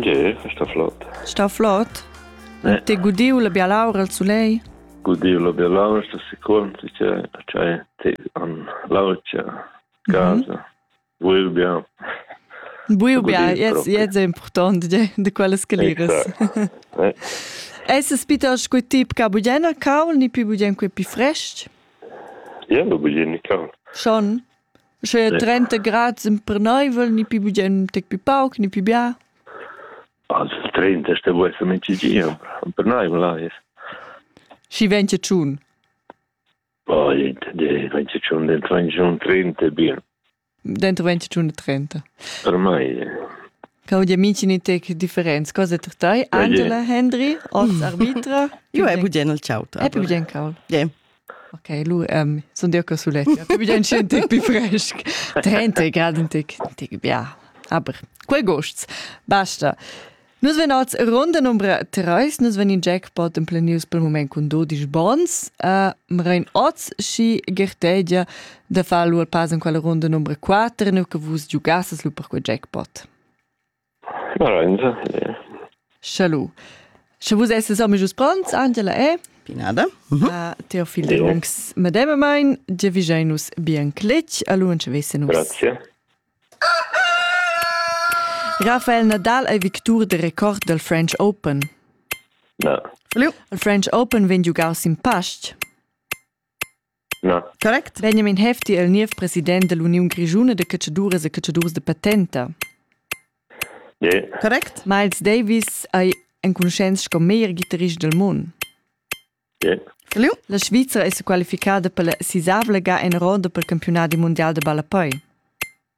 Ge, sta flot. Sta flot? Eh. Te gudiu la bialaura al sulei? Gudiu la bialaura sta sicur, che c'hai te an laucia casa. Mm -hmm. Buiu bia. Buiu bia, yes, yes è importante di quelle scalires. Esses bitter scu tip ca bugena caul, ni pi bugena qui pi fresc? Ja, bu bugena caul. Schon? Sche trenta grad emperneivel, ni pi bugen tec pi pauc, ni pi bia? Also, il 30 ste vuol essere min cigin, empernaivel là ist. Schi venche tschun? Oh, venche tschun, dentro venche tschun 30 bien. Dentro venche tschun 30. Per mai. Cau di amici ni tec differenz. Cosa per tai? Angela, Henry, oz arbitra? Io è bugen il ciautra. È bugen caul. Yeah. Ok, lu um, sun dir che sulet scientic pi fresc. 30 grad un tic, un tic bia. Aber quei gosts, basta. Nus ven oz ronda numbra 3, nus ven in jackpot en planius pel moment cun 12 bons. Uh, mrein oz schi gertegia da far lu al pass in quella ronda numbra 4, nu che vus giugasses lu per quei jackpot. Sche lu, sche vus esses amitgs pronts, Angela è Pinada. Teo fil lungs medemamain, giavischein nus bien cletg, allunsch vessen nus. Grazie. Rafael Nadal ei victur de record del French Open. Na. Il French Open vegn giugau sin pastg. Na. Correct vegnemin hefti el niev president dell'Uniun Grischuna de catschaduras e catschaduras de patenta. Yeah. Correct? Miles Davis ei enconuschents sco meglier ghitarrist del mund. Yeah. Feliu? La Svizra è sequalificada per la sisavla ga en roda per campionadi mondial de ballapoi.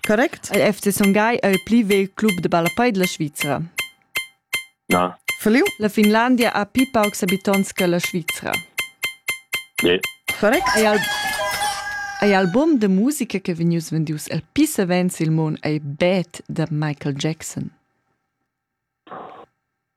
Correct. Il FC Son Gagl è il pli vegl club da ballapei dalla Svizra. Na. Verliu? La Finlandia ha pli paucs habitonts che la Svizra. Yeah. Correct. Ei al Ei album de musica che vegnius vendius el pli savens il mon ei Bad da Michael Jackson.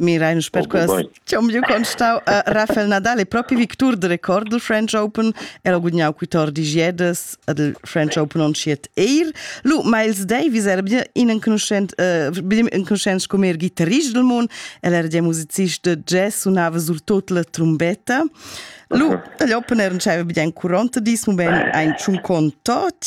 Mirain sper okay, quest chom giu constau a Rafael Nadal e propi victur de record del French Open el ha gudagnau 14 giedes del French Open on schiet eir lu Miles Davis era bien inenconuschent uh, bien inconuschent come guitarist del mund el era ja musicist de jazz sunava sur tot la trombetta Lu, dagli opener non c'aveva bien curonta dis, mo ben ein tschun contot.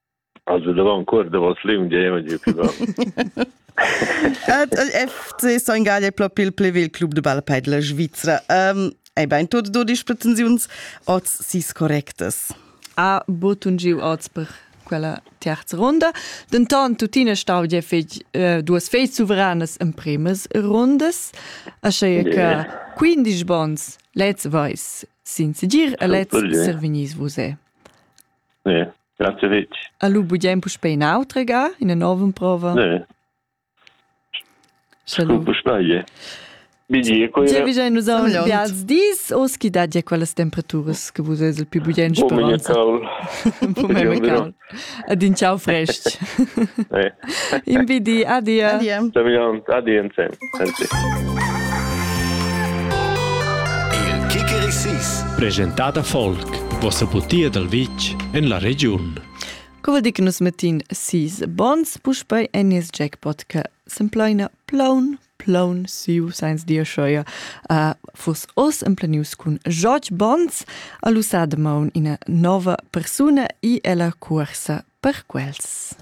Also davant cuor davos l'India giu pli bel. Ed soin gal è proprio il plevil club de balpei della Svizzera. Um, ei bein tot dodisch pretensiuns oz sis correctas. A botun giu oz per quella terza ronda. Dentant tuttina stau ja fetg eh, duas fei suveranas en premas rondas. Asche yeah. che 15 bons lez vais sin segir e lez servignis vos è. Ne, grazie fetg. A lu bugen puspei nautregar ina nova emprova? Ne. Scu puspei. Bidi, quei Tge vigein nus aunc bials dis, os chi dat ja quellas temperaturas che vus eis il più bugen speranza. Bumeme caul. Adin ciao frest. Eh. Invidi, adia. Adia. Adia insem. Il Kikerisis. Presentada Folk, vossa butia dal vitg en la regiun. Co vuol dir che nus mettin sis bons puspei en nies jackpot che s'empleina plaun plaun siu sainz dir scheuer uh, fus os emplenius cun George Bonds a l'usa de maun ina nova persuna i ella cuorsa per quels.